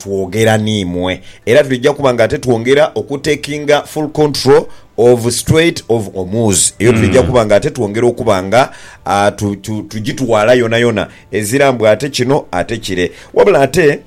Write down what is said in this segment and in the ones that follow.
twogera n'imwe era twidha kuba nga ate twongera oku takinga full control of Strait of Hormuz eyo twidha kuba nga ate twongera okuba nga tugitwala yonayona ezira mbu ate kino ate kire wabula ate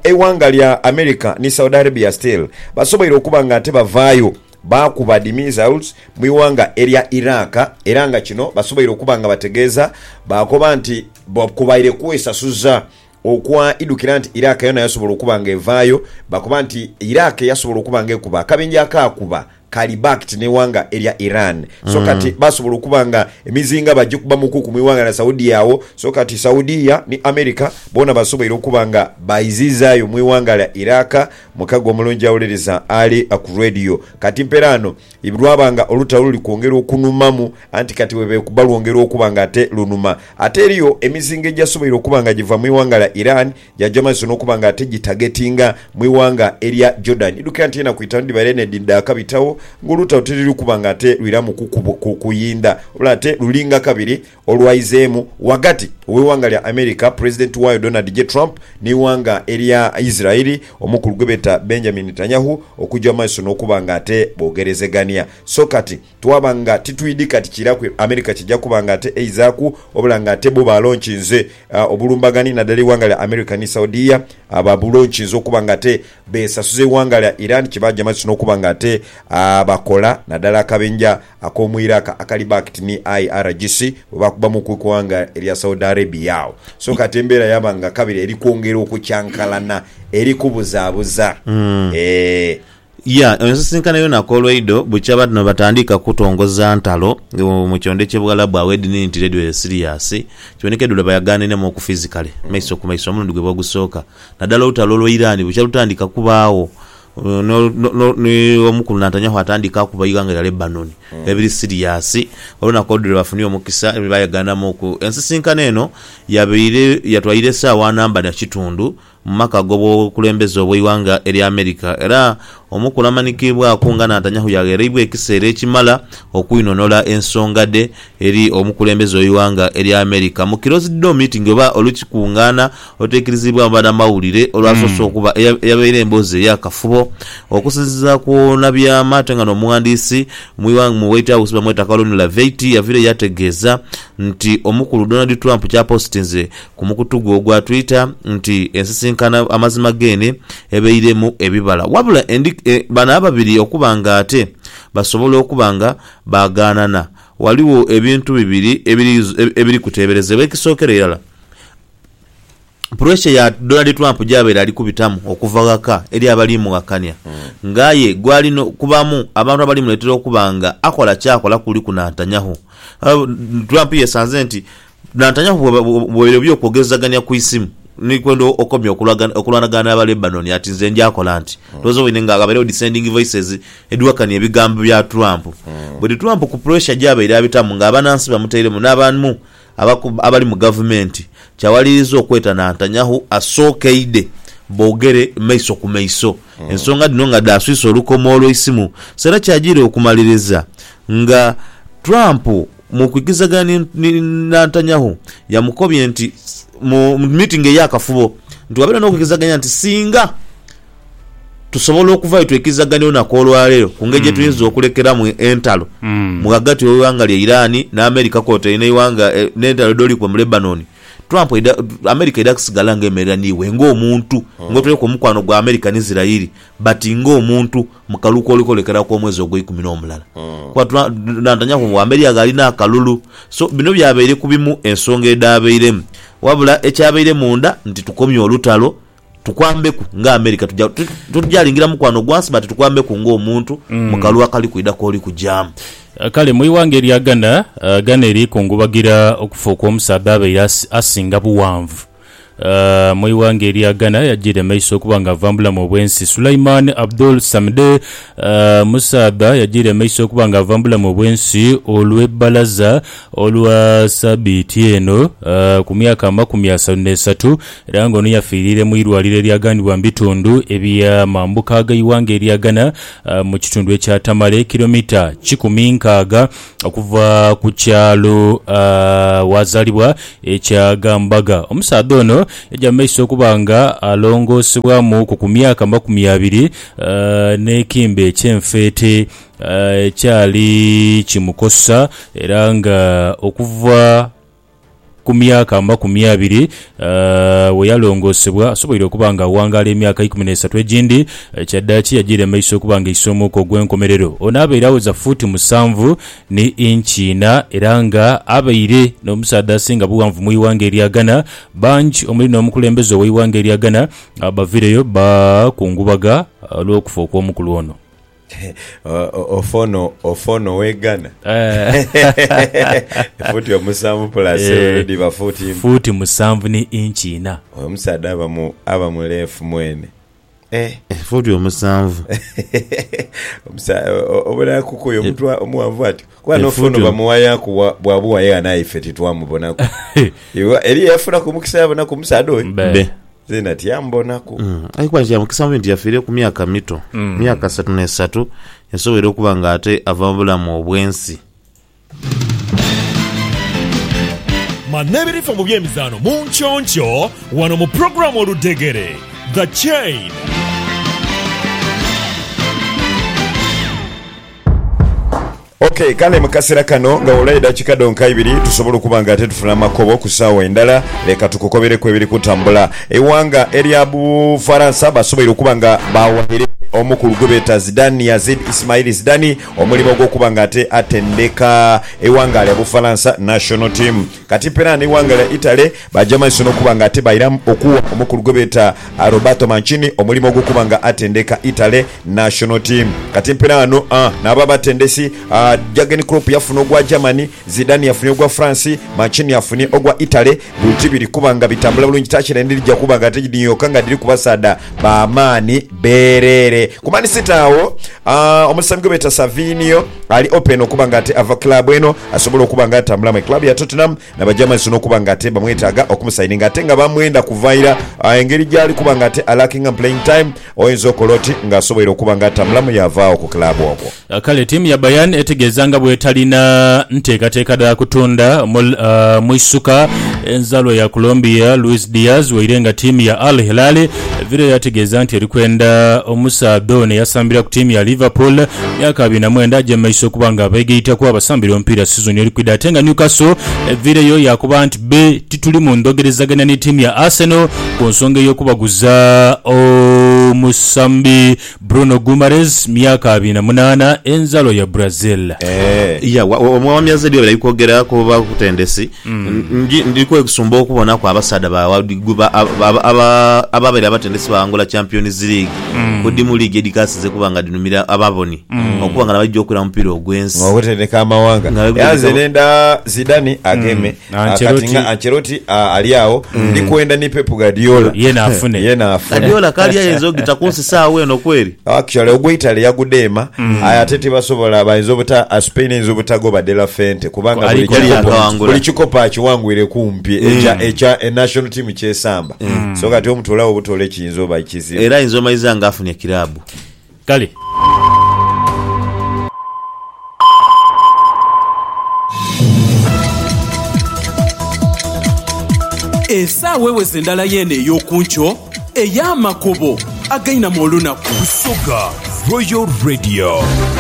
eighanga lya America ni Saudi Arabia still basoboire okuba nga ate bavaayo baakuba dhi missiles mu ighanga erya Iraq era nga kino basoboire okuba nga bategeeza baakoba nti kubaire kwesasuza Okwa idhukira nti Iraq yona yasobola okuba nga evaayo, bakoba nti Iraq yasobola okuba nga ekuba akabenje akaakuba kaali backed n'eighanga erya Iran. So kati basobola okuba nga emizinga bagikuba mu kuku mu ighanga lya Saudia agho. So kati Saudia ni America boona basoboire okuba nga baizizaayo mu ighanga lya Iraq. Mukago omulungi awuliriza ali ku radio. Kati mperaano. Iv, Lwaba nga oluta luli kwongera okunumamu, anti kati bwe beekuba lwongera okuba nga ate lunuma. Ate eriyo emizinga egyasoboire okuba nga giva mu ighanga lya Iran gyaja amaiso n'okuba nga ate gitagetinga mu ighanga erya Jordan. Idhukira nti enaku itanu dhibaire n'edhindi dhaakabitagho ng'oluta oti luli kuba nga ate lwiramu kuyindha, wabula ate lulinga kabiri olwaizeemu ghagati w'eighanga lya America Pulezidenti waayo Donald J. Trump n'eighanga erya Israel omukulu gwebeeta Benjamin Netanyahu okugya mu maiso n'okuba nga ate boogerezegania. So kati twaba nga titwidhi kati kiiraku America kija kuba nga ate eizaaku obula nga ate bo balonkinze obulumbagani nadala eighanga lya America ni Saudia babulonkinze okuba nga ate beesasuza eighanga lya Iran kyebaagya maiso n'okuba nga ate bakola nadala akabenja Akomuiraka akali backed ni IRGC bwebaakubamu ku ighanga erya Saudi Arabia agho so kati embeera yaaba nga kabiri eri kwongera okukyankalana eri kubuzaabuza eeh. Ya ensisinkano yo nakolwaido bukya badno batandiika kutongoza ntalo mu kyondo ekye Buwalabu agho edini nti radio eri serious kiboneka edula bayaganenemu oku physically maiso ku maiso omulundi gwe bogusooka nadala olutalo lwa Iran bukya lutandika kubaagho Ni omukunantanya hwatandika okuba eighanga lya Lebanoni ebiri siriyasi. Olunaku olwo lwebafunira omukisa era lwebayeganhanamuku. Ensisinkano eno yabaire yatwaire esaawa namba na kitundu mu maka ag'obwobukulembeze obw'eighanga erya America era omukulu amanikiibwaku nga Nantanyahu yagheereibwa ekiseera ekimala okwinhonhola ensonga dhe Eri omukulembeze w'eighanga erya America, mu closed door meeting oba olukikungaana oluteikiriziibwamu banamawulire olwasoose okuba, eyabaire emboozi eyakafubo okusinziira ku onabyama ate nga n'omughandiisi mu White House bamweta Carolyn Laveity yavirayo yategeeza nti omukulu Donald Trump kyapositinze ku mukutu gwe ogwa Twitter nti ensisinkano amazima geene ebairemu ebibala wabula bano ababiri okuba nga ate basobola okuba nga baagaanana. Ghaligho ebintu bibiri ebiri kuteeberezebwa. Ekisookera irala, puresha ya Donald Trump gy'abaire ali kubitamu okuva ghaka eri abali mughakania ng'aye gw'ali kubamu abantu abali muleetera okuba ng'akola ky'akola kuliku na ntanyaho. Trump yesanze nti Nantanya ku bwebaire eby'okwogezagania ku isimu ni kwenda okomya okulwanagana n'aba Lebanon ati, Nze ndyakola nti ndhooza waine nga ghabeerewo dissenting voices edhiwakania ebigambo bya Trump. Buli Trump ku pressure gy'abaire abitamu ng'abanansi bamutairemu n'abamu abali mu gavumenti kyawaliriza okweta Nantanyahu asookeidhe boogere maiso ku maiso. Ensonga dhino nga dhaaswisa olukomo olw'eisimu, Serach ajiire okumaliriza nga Trump Mu kwigizaganya ni Nantanyahu, yamukobye nti mu miitingi ey'akafubo nti wabeera n'okwigizaganya nti ssinga tusobola okuvaayo twekizaganye olunaku olwaleero ku ngeri gyetuyinza okulekeramu entalo mu ghagati w'eighanga lya Iran n'Amerika kwotaire n'eighanga n'entalo edholikwa mu Lebanon, Trump aidha Amerika aidha kusigala nga emerera n'iwe ng'omuntu, ng'otoireku omukwano gwa Amerika ni Zirayiri but ng'omuntu. Mu kalulu koli kolekera ku omwezi ogweikumi n'omulala, kwatulantanyaaku ngu Amelia gh'alina akalulu. So bino byabaire ku bimu ensonga edhaabairemu. Wabula ekyabaire munda nti tukomye olutalo, tukwambeku nga America. Tuja, totujalingira mukwano gwansi but tukwambeku nga omuntu mu kalulu akali kwidha k'oli kujaamu. Kale mu ighanga erya Ghana, Ghana eri kungubagira okufa okw'omusaadha abaire asinga bughanvu. mu ighanga erya Ghana yajiira emaiso okuba nga ava mu bulamu obw'ensi. Sulaiman Abdul Samde, musaadha yajiira emaiso okuba nga ava mu bulamu obw'ensi olw'ebbalaza olwa sabiiti eno ku myaka amakumi asatu n'esatu era nga ono yafiiriire mu irwaliro eryaghanibwa mu bitundu ebya mambuka gh'eighanga erya Ghana mu kitundu ekya Tamale, kilomita kikumi nkaaga Okuva ku kyalo ghazaalibwa ekya Gambaga, omusaadha ono yaja mu maiso okuba nga alongoosebwamuuku ku myaka amakumi abiri n'ekimbe eky'enfeete ekyali kimukosa era nga okuva Ku myaka amakumi abiri we yalongoosebwa, asoboire okuba ng'aghangaala emyaka eikumi n'esatu egindi. Kyadaaki yajiira mu maiso okuba ng'eisa omwuka ogw'enkomerero. Ono abaire awoza fuuti musanvu ni inchi ina era ng'abaire n'omusaadha asinga bughanvu mu ighanga erya Ghana. Bangi omuli n'omukulembeze ow'eighanga erya Ghana baviireyo baakungubaga olw'okufa okw'omukulu ono. Ofono ofono wegana Eh. futi omusanvu pulasi Eh. elu dhiba futi imba Fuuti musanvu ni inchi ina. oyo omusaadha aba mu aba muleefu mwene eh Futi omusanvu. omusa- o- obulala kukuyo omuntu a- omuwanvu atyo kuba Eh, nofono futi- bamuwayaku bwa- bwabuwa yegha naye ife titwamubonaku Iwa- eriyo eyafunaku omukisa yabonaku omusaadha oyo Be. Be. Nze natya mbonaku. Aye kuba kya mukisa mubi nti yafiire ku myaka mito, myaka asatu n'esatu, yasoboire okuba nga ate ava mu bulamu obw'ensi. Manya ebirifa mu by'emizaano mu nkyonkyoo wano mu pulogulaamu Oludhegere, The Chain. Ok, kale mu kasera kano nga wabulayo edakika dhonka ibiri tusobole okuba nga ate tufuna amakobo ku saawa endala, leka tukukobereku ebiri kutambula. Eighanga erya Bufaransa basoboire okuba nga baawaire omukulu gwe beeta Zidane Yazid Ismail Zidani omulimo ogw'okuba nga ate atendeka eighanga lya Bufaransa national team. Kati Pera n'eighanga lya Italy baaja maiso n'okuba nga ate bairamu okuwa omukulu gwe beeta Roberto Mancini omulimo ogw'okuba nga atendeka Italy national team. Kati Pera ghano n'aba abatendesi, Jurgen Klopp yafuna ogwa Germany, Zidane yafunye ogwa France, Mancini afunye ogwa Italy. Buli ti biri kuba nga bitambula bulungi, takira endiri dhija kuba nga ate dhino yoka nga dhiriku basaadha ba maani. Beerere ku Man City agho omusambi gwe beeta Savinio ali open okuba nga ate ava club eno asobole okuba nga atambula mu club ya Tottenham na bagya amaiso n'okuba nga ate bamwetaaga okumusayininga ate nga bamwenda kuva ira. Engeri gyali kuba nga ate alakingamu playing time oyinza okola oti nga asoboire okuba nga atambulamu yaavaagho ku club okwo. Kale ttiimu ya Bayern etegeeza nga bw'etalina nteekateeka dha kutunda mwisuka enzalwa ya Colombia Luis Diaz waire nga ttiimu ya Al Hilal evire yaategeeza nti eri kwenda omusaadha ono eyasambira ku ttiimu ya Liverpool myaka abiri na mwenda aje mu maiso okuba nga abeegaitaku abasambira omupiira sizoni eri kwidha ate nga Newcastle eviireyo yaakoba nti bbe tituli mu ndhogerezaganya ni ttiimu ya Arsenal ku nsonga ey'okubaguza omusambi Bruno Guimarez, myaka abiri na munaana, enzalwa ya Brazil. Eeh ya wa, wa, wa myaza ebyo bali kwogera ku bakutendesi ndi ndi kwesumba okubonaku abasaadha ba wa gwe ba aba aba ababaire abatendesi baghangula Champions League ku dhi mu liigi edhikasize okuba nga dhinhumira ababoni okuba nga nabaidhi okwira mu mupiira ogwensi. Nga bwebutendeka amawanga. Nga bwebutendeka Era nze ama- nenda Zidane ageme Na Ah, kati Ancelotti- nga Ancelotti ah, ali agho ndi kwenda ni Pep Guardiola Yena afune. yena afune Guardiola kali ayinza ogita kunsisa agho eno kweri. actually ogwe Italy yagudeema aye ate tibasobola bayinza obuta ah, Spain eyinza obutagoba De La Fuente kubanga Ali buli kwali kikopo- akawangula. buli kikopo akiwangwire kumpi ekya ekya eh, national team kyesamba so kati omutolawo butole kiyinza oba kizibu Era ayinza omayiza nga afunye kirabu. Kale. Esaawa eweze ndala yeene ey'oku nkyo ey'amakubo againama olunaku. Busoga Royal Radio.